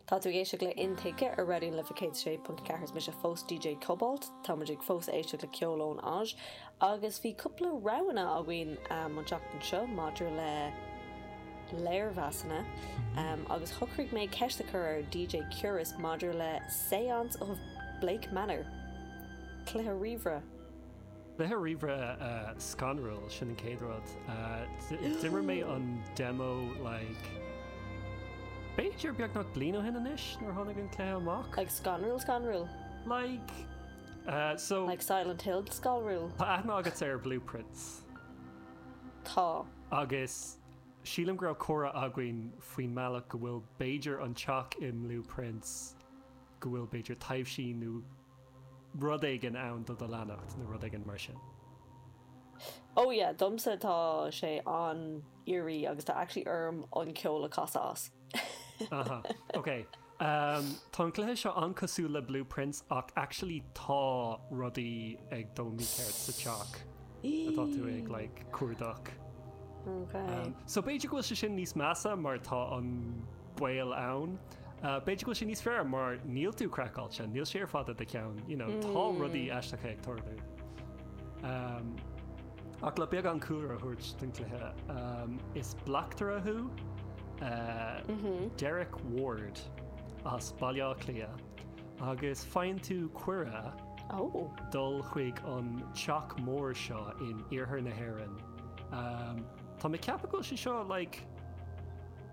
Tá tú ag éisteacht le Intuigthe ar Raidió na Life 106.4. Is mise fós DJ Cobalt. Tá muid ag fós ag éisteacht le ceol ón Áis agus bhí cúpla roghanna againn um, an seachtain seo maidir le léirmheasanna um, agus shocraigh mé ceist a chur ar DJ Curas maidir le Seance of Blake Manor. Cluiche ríomhaire Cluiche ríomhaire scanrúil, sin an chéad rud. D'imir mé an demo like b'fhéidir beagnach bliain ó shin anois nuair a tháinig an cluiche amach. Like scanrúil scanrúil? Like so. Like Silent Hill scanrúil? Tá aithne agat ar Blue Prince? Tá. Agus sílim go raibh comhrá againn faoin mbealach go bhfuil b'fhéidir an teach i mBlue Prince go bhfuil b'fhéidir taibhsí nó rud éigin ann do do leanacht nó rud éigin mar sin. Oh yeah, domsa tá sé an-eerie agus tá actually orm an ceol a chasadh as. Aha, ok. Umm, tá an cluiche seo an-chosúil le Blue Prince ach actually tá rudaí ag dul mícheart sa teach atá tú ag like cuardach. Ok. Umm, so b'fhéidir go bhfuil sé sin níos measa mar tá an. baol ann. B'fhéidir go bhfuil sé níos fearr mar níl tú craiceáilte, níl sé ar fad i do cheann, you know, tá mm. rudaí aisteacha ag tarlú. Um, ach le beagán cúlra a thabhairt den cluiche um, is bleachtaire thú uh, mm -hmm. Derek Ward as Baile Átha Cliath agus faigheann tú cuireadh oh. dul chuig an teach mór seo in iarthar na hÉireann. Um, tá mé ceapadh go bhfuil sé seo like,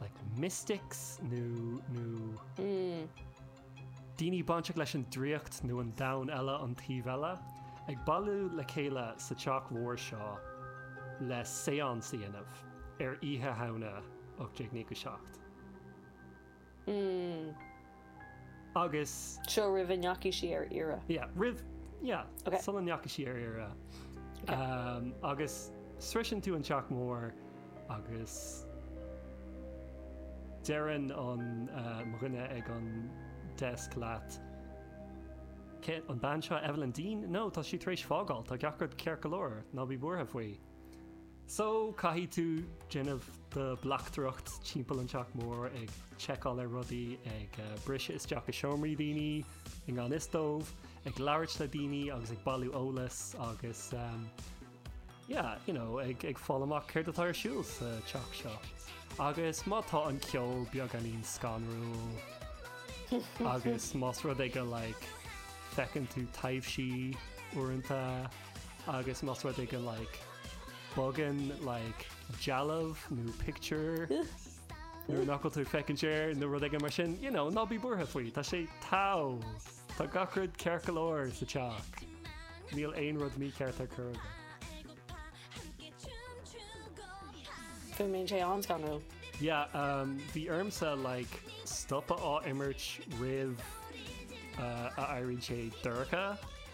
like mystics nó nó daoine bainteach leis an draíocht nó an domhan eile, an taobh eile, ag bailiú le chéile sa teach mhór seo le seance a dhéanamh ar Oíche Shamhna 1897. agus. seo roimh a ndeachaigh sí ar iarraidh. yeah roimh yeah Ok. sula ndeachaigh sí ar iarraidh Ok. Ahm, agus sroicheann tú an teach mór agus deireann an ah, mo dhuine ag an desk leat Cé an bean seo Evelyn Deane? No, tá si tar éis fágáil, tá gach rud ceart go leor, ná bí buartha faoi. So, caithfidh tú déanamh do bleachtaireacht timpeall an teach mór ag tseiceáil ar rudaí, ag briseadh isteach i seomraí daoine i ngan fhios dóibh, ag labhairt le daoine agus ag bailiú eolas agus yeah, you know, ag ag fáil amach céard atá ar siúl sa teach seo. Agus má tá an ceol beagáinín scanrúil agus más rud é go like feiceann tú taibhsí uaireanta, Agus más rud é go like bogann like dealbh nó pictiúr nuair nach bhfuil tú ag féachaint air nó rud éigin mar sin, you know, ná bí buartha faoi, tá sé togha! Tá gach rud ceart go leor sa teach. Níl aon rud mícheart ar chor ar bith. Go mbíonn sé an-scanrúil. Yeah, um, bhí ormsa like stopadh á imirt roimh uh, a éiríonn sé dorcha.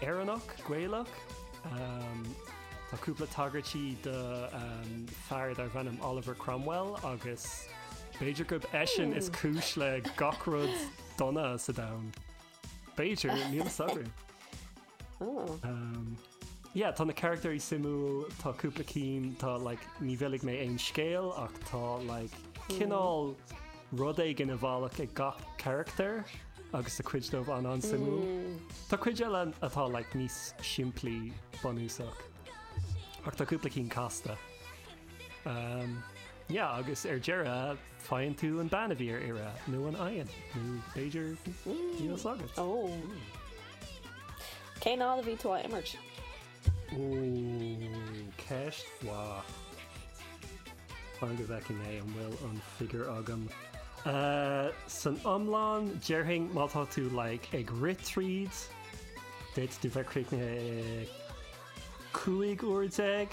Éireannach, Gaelach. Tá cúpla tagairt do fear darb ainm Oliver Cromwell agus b'fhéidir gurb eisean is cúis le gach rud dona sa domhan. B'fhéidir, níl 'fhios againn. Yeah tá na caractairí suimiúil tá cúpla cinn tá like ní mhillfidh mé aon scéal ach tá like cineál rud éigin i bhfolach ag gach caractar agus tá cuid díobh an an suimiúil. Hmm. Tá cuid eile atá like níos simplí bunúsach ach tá cúpla cinn casta. Um, yeah agus ar deireadh Faigheann tú an bean a bhí ar iarraidh nó an bhfaigheann, nó b'fhéidir díol sagairt. Ó! Cén fhad a bhí tú á imirt? Ó, ceist mhaith. Fan go bhfeicfidh mé an bhfuil an figure agam. San iomlán, déarfainn má tá tú like ag rith tríd, d'fhéadfadh tú bheith críochnaithe 15 uair.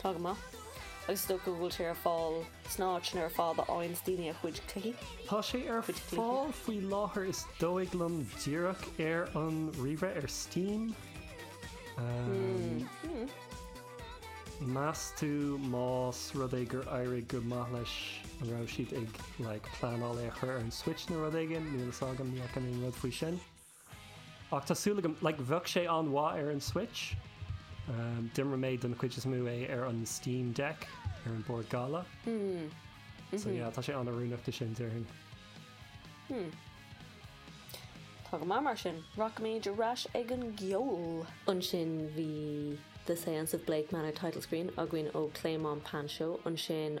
Tá go maith. Agus is dócha go bhfuil sé ar fáil sna háiteanna sin ar fad a fhaigheanns daoine a gcuid cluichí. Tá sé ar fáil faoi láthair is dóigh liom díreach ar an ríomhaire ar Steam. Meas tú más rud é gur éirigh go maith leis an raibh siad ag like pleanáil é a chur ar an Switch nó rud éigin, níl a fhios agam, ní fhaca mé aon rud faoi sin. Ach tá súil agam, like, bheadh sé an-mhaith ar an Switch. D'imir mé don chuid is mó é ar an Steam Deck, ar an bord gala. So yeah, tá sé an-oiriúnach do sin, déarfainn. Hmm. Tá go maith mar sin. Rachaimid ar ais ag an gceol. Ansin bhí The Seance of Blake Manor Title Screen againn ó Clément Panchout. Ansin.